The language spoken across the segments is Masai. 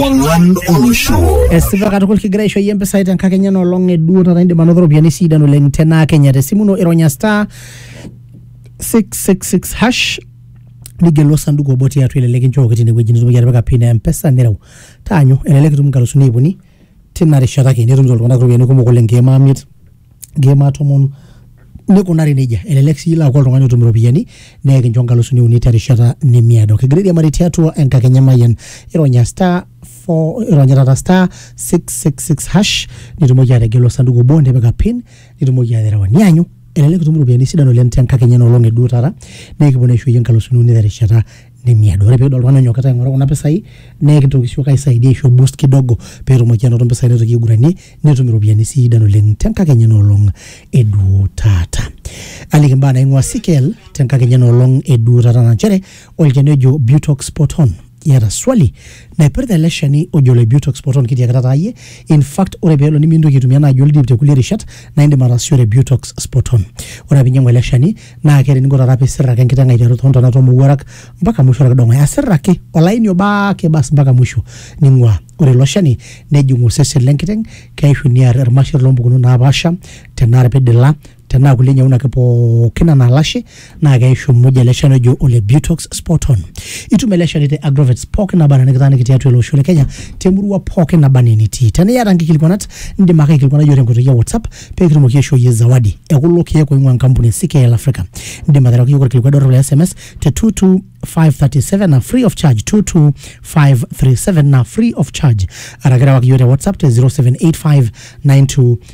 Ong'wan olosho. Esipa katukul kigira aisho iyie mpisai tenkakenya ena olong eduo taata indim anoto ropiyiani sidan oleng tena kenya tesimu ino ironya star 666 hash nigelu osanduku obo tiatua ele likinchooki tinewueji nitumoki atipika pin e mpesa nireu taanyu elelek itum nkalusuni iip uni tina rishata ake netumito iltung'anak iropiyiani kumok oleng nkeek maa miet nkeek tomon nikunari nejia elelek sii ilo aaku oltung'ani otum iropiyiani naa ekincho inkalusuni uni terishata nemiado kigira airiamari tiatua enkakenya emayian ironya star four- ironya taata star 666 hash nitumoki ategelu osanduku obo nipika pin nitumoki aterewa nianyu elelek itum iropiyiani sidan oleng tenkakenya enoolong eduo taata naa ekipuo naa aisho iyie inkalusuni uni terishata nemiado. Ore pidol oltung'ani onyokita aing'oru kuna pisai, naa ekintoki siyiok aisaidia aisho boost kidogo petumoki anoto mpisai naitoki aiguranie, netum iropiyiani sidan oleng tenkakenya enoolong eduo taata. Aliki mbaa naing'ua CKL tenkakenya enoolong eduo taata na nchere, olchani ojo Butox Spot On. Iyata swali? Naipirta ele shani ojo ole Butox poton kitiakita taa iyie. In fact ore pelo nimintoki aitumia naaji oldip te kulie rishat naa indim ataasishore Butox Spoton. Ore apa inyiang'u ele shani naa keeta eninko taata pisir ake enkiteng aiteru too ntona too mowuarak mpaka musho orkidong'oe. Asir ake olaini obo ake bas mpaka musho ning'uaa. Ore ilo shani nejing osesen le nkiteng, keishu near irmasher loo mpukunot napaasha tenaa irpidila tenaa kulie nyaun ake pookin anaa lashe naa keishu muj ele shani ojo ole butox spoton itum ele shani te agrovets pookin naba anaa nikitaaniki tiatua ele osho le kenya temurua pookin naba anaa enitii tenaa iyata nkikilikuanat indim ake aikilikuanai iyiook tenkoitoi e whatsapp pee kitumoki aishoo iyie zawadi ekulo keek oing'ua enkampuni e ckl africa indim aterewaki iyiook orkilikuai dorrop le sms te 22537 na free of charge 22537 na free of charge araki rewaki iyiook te whatsapp te 078592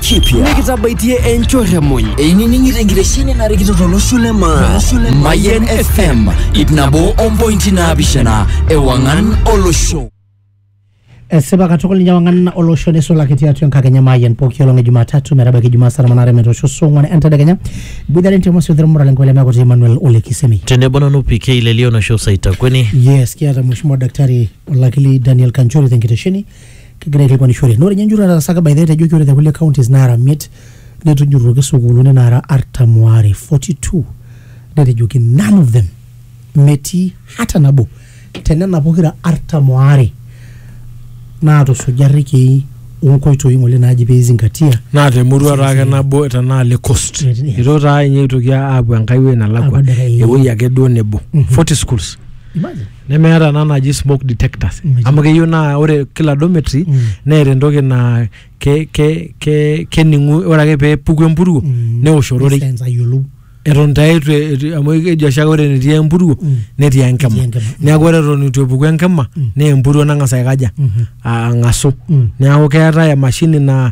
kipya nikitabaitie enchoremony einining'ito enkitesheni narikito tolosho le maa mayen fm ip nabo ompointi naapishana ewang'an olosho esipa katukul ninye wang'an olosho neisulaki tiatua enkakenya maayian pooki olong e jumatatu metabaiki jumaa saa tomon aare metoosho saa ong'wan entedekenya iboitare ntimosi othirmura lenkoe lemeaku te emmanuel olekisemi tenebo nanu pk lelio nosho saitakweni yes kiata mheshimiwa daktari olakili daniel kanchori tenkitesheni kegira aikilikuanishore naa ore ninye enjurro nataasaka by the way etejoki ore te kulie counties naara miet netujurruoki sukuuluni naara artam waare 42 netejoki none of them metii hata nabo tenena pokira artam waare naatusuja irrekiei onkoitoi ng'ole naaji pee izingatia naa temurua taa ake nabo tenaa le coast Yes. eitu taa ninye eitoki aapuo enkai wueji nalakua Apuo enkai wueji. ewueji ake duo nebo 40 schools Imagine. nemeeta ena naji smoke detectors Mm. amu keyieu naa ore kila dormitory Mm. neeta entoki naa ke, ke, ke, kening'u ore ake pee epuku empuruo Mm. neosh ororei Sense ayiolou eton taa eitu eitu- amu keji oshi ake ore enetii empuruo Mm. netii enkima Netii enkima. neeku ore eton eitu epuku enkima Mm. naa empuruo nang'as aikaja Mhm. ang'asu Mm. neeku keetae emashini naa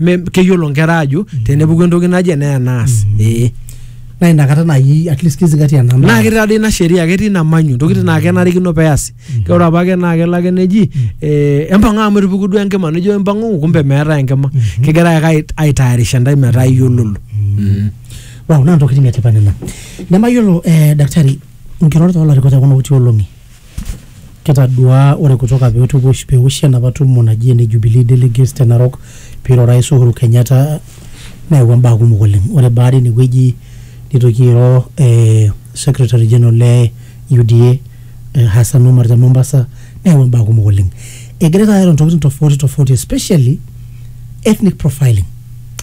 Me- keyiolo nkera ajo tenepuku entoki naje naa enaas ee naa inakata naaji at least kizingatia namba naa ketii taadoi ina sheria ketii ina manyu ntokitin naa kenarikino peasi ke ore apake naa kelo ake neji eh, empang'a amu etupuku duo enkima nijo empang'u kumbe meetae enkima kegira ake ait- aitayarisha ntae metaa iyiololo wow naa ntokitin etipat nena nemayiolo eh, daktari nkirorot oolarikok tekuna kuti olong'i Kitaduaa ore kutoka peoshi enapa tumo naji ene Jubilee delegates te Narok peiro orais Uhuru Kenyatta neawua mbaa kumok oleng. Ore baada ine wueji neitoki airo ee secretary general le UDA Hassan Omar te Mombasa neyawua mbaa kumok oleng. Egirai taata airo ntokitin tofauti tofauti especially ethnic profiling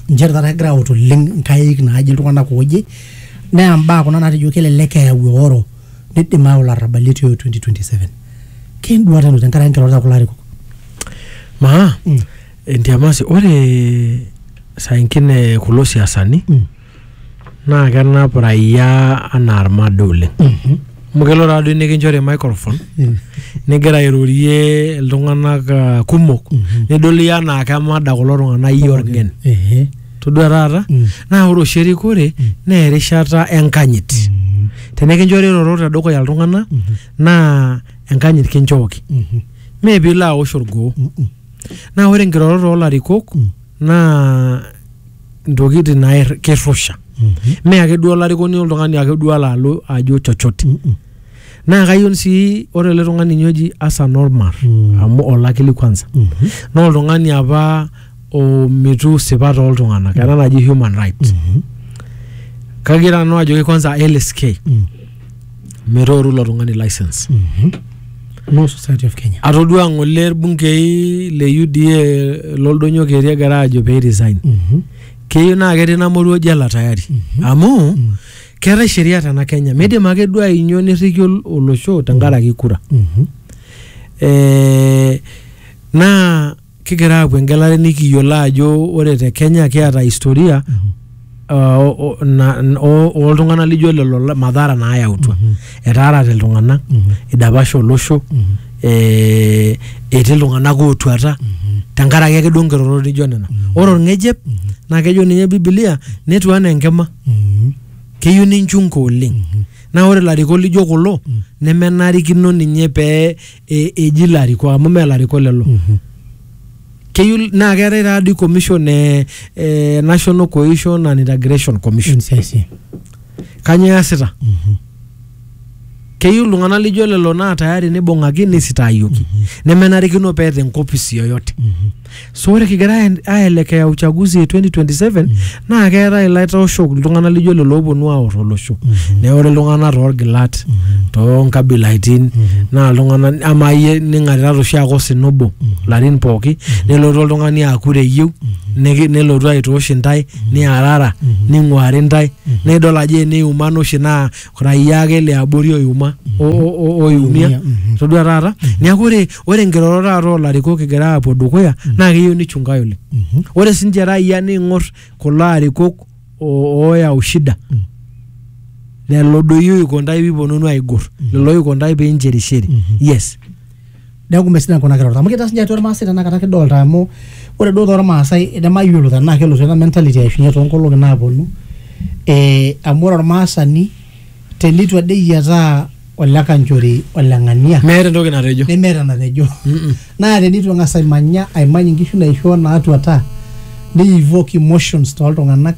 nchere taata kegirai aut oleng nkaik naaje iltung'anak ooje naa mbaa kuna naatejo kelelek eyau eoro. Nidim ayau larrabali etii o 2027. Ke enduata ino tenkaraki nkirorot e kulo arikok? Maa, entiamasi, ore saa ingine kulo siasani naa kenap raia anaa ilmada oleng. Amu kelo taa doi nikinchori microphone nigira airorie iltung'anak kumok nidol iyie anaa kemada kulo tung'anak iyie olng'en. todua taata Mm. naa ore oshi erikore naa erishata enkanyit Mhm. tenikinchori irorot tedukuya iltung'anak Mhm. naa enkanyit kinchooki Mhm. mee piilo aosh orgoo Mhm. naa ore nkirorot oolarikok Mm. naa ntokitin nair kirrusha Mhm. mee ake duo olarikoni oltung'ani ake duo alo alo ajo chochote Mhm. naa kayieu sii ore ele tung'ani ninye oji Hassan Omar Mm. amu olakili kwanza Mhm. naa oltung'ani apa omitu sipat oltung'anak ena naji human rights Mhm. kagira nanu ajoki kwanza LSK Mm. metooru ilo tung'ani license Mhm. No Society of Kenya. atodua ng'ole irbungei le UDA loldonyo keri egira aajo pee resign Mhm. keyieu naa ketii namoruo jela tayari amu keetae sheria tena kenya midim ake duo ainyo nirriki ol- olosho tenkaraki kura Mhm. Eh, naa kigira aapuo engelare nikiyiolo ajo ore te kenya kiata historia uh, o- o- na- n- o- ooltung'anak lijo lelo la- madhara naayautua Mhm. etaarate iltung'anak Mhm. idapasha olosho Mhm. eh, etii iltung'anak ootuata Mhm. tenkaraki ake duo nkirorot nijo nena ore olng'ejep naa kejo ninye bibilia netu anaa enkima Mm. keyieu ninchunka oleng Mhm. naa ore ilarikok lijo kulo Mm. nemenarikino ninye pee e- eji ilarikok amu mee ilarikok lelo Mhm. keyieu naa keetae taadii commission e, e national cohesion and integration commission NCIC. kanyoo easita Mhm. Keyieu iltung'anak lijo lelo naa tayari neibung'aki neisitaayioki nemenarikino peeta enkopis yoyote. So ore kigira aen- aelekea uchaguzi e 2027 naa keetae ilaitoshok iltung'anak lijo lelo ooponu aor olosho. Neeku ore iltung'anak toorgilat, toonkabilaitin naa iltung'anak amaa iyie ning'atirara oshi ake osina obo ilarin pooki nelotu oltung'ani aa kura eyieu niki- nelotu aitoosh intae niarara ning'uari ntae naa idol ajo eniumana oshi naa raia ake liabori oiuma o- o- o- oiumia Oiumia, mhm. todua taata neeku ore ore nkirorot taata oolarikok egira aapuo dukuya naa keyieu nichungae oleng Mhm. ore sinche raia niing'or kulo arikok o- ooyau shida lelo doi oiko ntae piiponunu aigor lelo oiko ntae piincherisheri yes neeku mesidai kuna kirorot amu kitaa sinye atua irmaasai tenakata kidolta amu ore duo tormaasai nemayiolo tenaa kelotu ena mentality aishunye toonkolong'i naaponu eh, amu ore ormaasani tenitu ade eyiataa ole kanchori ole ng'ania meeta entoki natejo nemeeta enatejo Mm-mm. naa tenitu eng'as aimanya aimany inkishu naishoo naatuata ni evoke emotions toltung'anak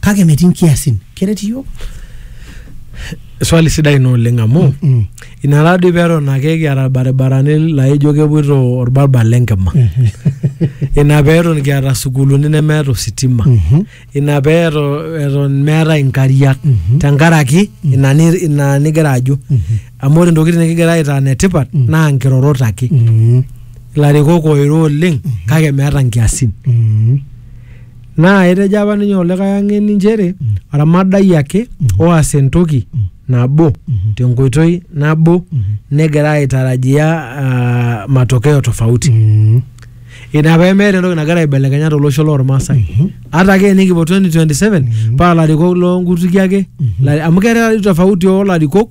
kake metii nkiasin keret iyiook swali sidai ina oleng amu Mm. ina taadoi peton ake kiata irbaribarani laijo kepuoito orbarbar lenkima ina peton kiata sukuuluni nemeeta ositima Mhm. ina pee eto- eton meetae inkariak Mhm. tenkaraki ina ni- ina nigira ajo amu ore ntokitin nikigira aitaa netipat Mm. naa nkirorot ake Mm. ilarikok oiro oleng kake meeta nkiasin Mm. Naa etejo apa ninye olikae ang'eni nchere oramadai ake oas entoki nabo tenkoitoi nabo negira aitarajia ah, matokeo tofauti. Mm. Ina pee meeta entoki nagira aibelekenya tolosho lormaasai. Ata ake enikipuo 2027 paa larikok loo nkutukie ake. Lari- Amu keetae tofauti oo larikok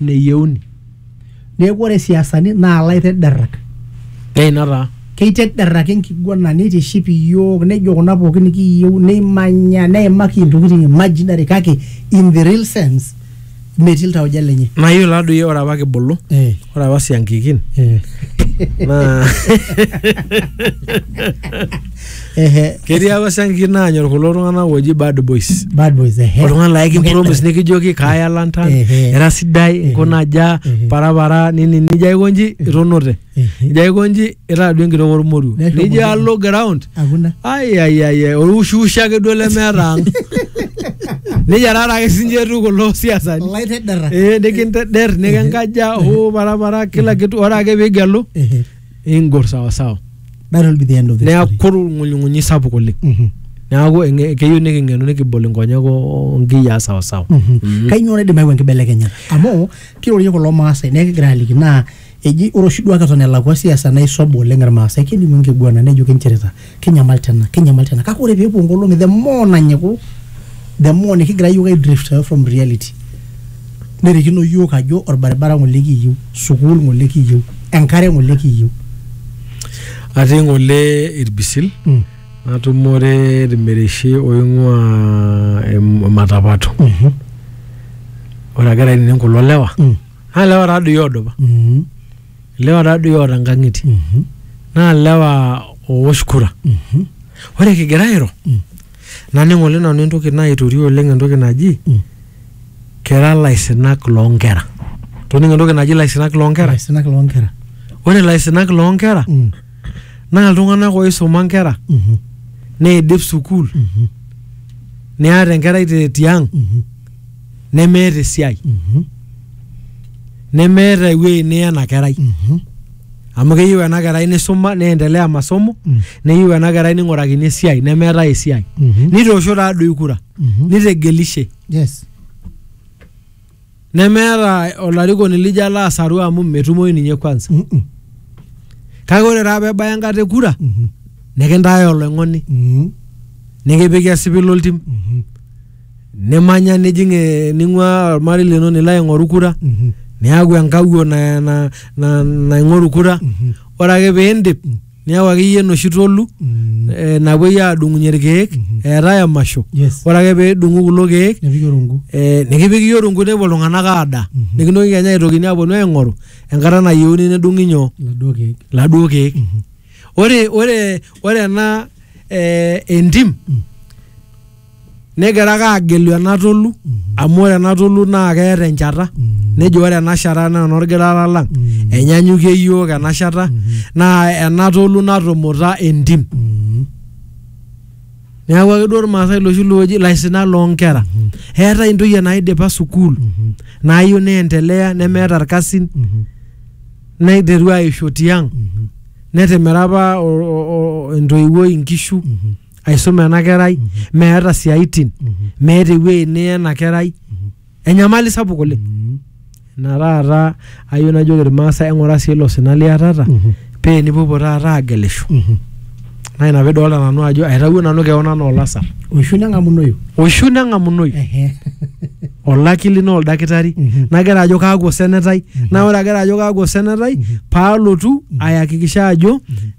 neyieuni neeku ore siasani naa laitederrak keina taa keitederraki enkiguana neitiship iyiook nejo kuna pookin nikiyieu neimanya neimaki intokitin imaginary kake in the real sense metii iltauja lenye nayiolo taduo iyie ore apa kibulu eh, ore apa siankikin eh. naa Ehe, ketii apa siankiki naanyor kulo tung'anak ooji bad boys bad boys ehe. oltung'ani laa ekimpromis nikijoki kaaya lantan Ehe. era sidai nkuna aja Ehe. parapara nini nijo aiko nji itonote Ehe. nijo aiko nji itaa duo enkitok ormoruo Neshomo nijo duo. alo ground Hakuna. aiaiai orwushiwushi ake duo lemeeta ang nejia taata ake sinche etiu kulo siasani Ilaitedera. Eh, nikinteder nikinkaja hoo parapara kila kitu ore ake piigelu Ehe. ingor sawasawa That will be the end of the neaku story. orng'unyung'unyi sapuk oleng Mhm. neaku eng'e- keyieu niking'enu nikibol inkonyek o- onkiyiaa sawasawa Mhm. Kainyioo naidim ayau enkibelekenyata? Amu kirorie kulo Maasai naa ekigira aliki naa eji ore oshi duake eton elakua siasa naisob oleng Irmaasai kelimu enkiguana nejo kinchirita. kinyamal tena kinyamal tena kake ore peepuo nkolong'i the more nanyiku the more nikigira yiok aidrift away from reality nerikino yiok ajo orbaribara ng'ole kiyieu sukuul ng'ole kiyieu enkare ng'ole kiyieu atii ng'ole irbisil Mm. natumore irmereshi oing'ua em- ematapato Mhm. ore agira ainining kulo lewa Mm. naa lewa taadoi oodupa Mhm. ilewa taadoi oota nkang'itie Mhm. naa ilewa oowosh kura Mhm. ore kigira airo Mm. naning oleng nanu entoki naitorio oleng entoki naji Mm. kira laisinak loonkera toning entoki naji laisinak loonkera Laisinak loonkera. ore laisinak loonkera Mm. naa iltung'anak oisuma nkera Mhm. neidip sukuul Mhm. neata enkerai te tiang Mhm. nemeeta esiai Mhm. nemeeta ewueji niya ena kerai Mhm. amu keyieu ena kerai nisuma neendelea masomo Mm. neyieu ena kerai ning'urakini esiai nemeetae esiai Mhm. nitoosho taadoi kura Mhm. nitegelishe Yes. nemeeta olarikoni lijo alo asaru amu metumoyu ninye kwanza Mhm. kake ore taa pebaya enkata e kura Mhm. nikintae oloing'oni Mhm. nikipiki esipil oltim Mhm. nimanya nijing eh, ning'ua ormarei lino nilo aing'oru kura Mhm. niaku enkawuo na- na- na- naing'oru kura Mhm. ore ake piindip niaku akeyie enoshi tolu Mm. eh, napuoi aadung'unye irkeek Mhm. eetae emasho Yes. ore ake piidung'u kulo keek Nepiki orungu. eh, nikipik iyie orungu nepuo iltung'anak aada Mhm. nikintoki kenya aitokini aponu aing'oru enkata nayieuni nedung'i nyoo Iladuo keek. laduo keek Mhm. ore ore ore ena eh, entim Mm. negira ake agelu ena tolu amu ore ena tolu naa keeta enchata nejo ore ena shata naa enorgirara lang enyanyukie iyiook ena shata naa ena tolu natumuta entim neeku ake duo irmaasai loshi looji ilaisinak loonkera eetae intoyie naidipa sukuul naayieu neendelea nemeeta irkasin neiteru aisho tiang netimira apa o- o- o- entoiwuoi inkishu aisuma ena kerai meeta siaitin meeta ewueji niya ena kerai enyamali sapuk oleng ina taata ayieu najoki irmaasai eng'ura sii ilo sina liatata paa enipuopuo taata agelisho naa ina piidolta nanu ajo aitawuo nanu keon anaa olasar oishu neng'amunoyu oishu neng'amunoyu Ehe. olakili naa oldakitari Mhm. nagira ajo kaaku osenetai naa ore agira ajo kaaku osenetai paalotu ayakikisha ajo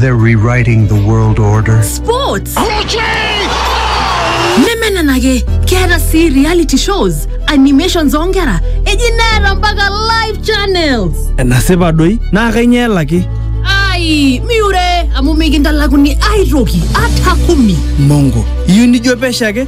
They're rewriting the world order. Sports. nemenenake keeta sii reality shows animations oonkera eji neeta mpaka live channels enasipa doi naa kainyoo elaki ai miure amu mikintalakuni aitoki ata kumi mongo iyieu nijo pesho ake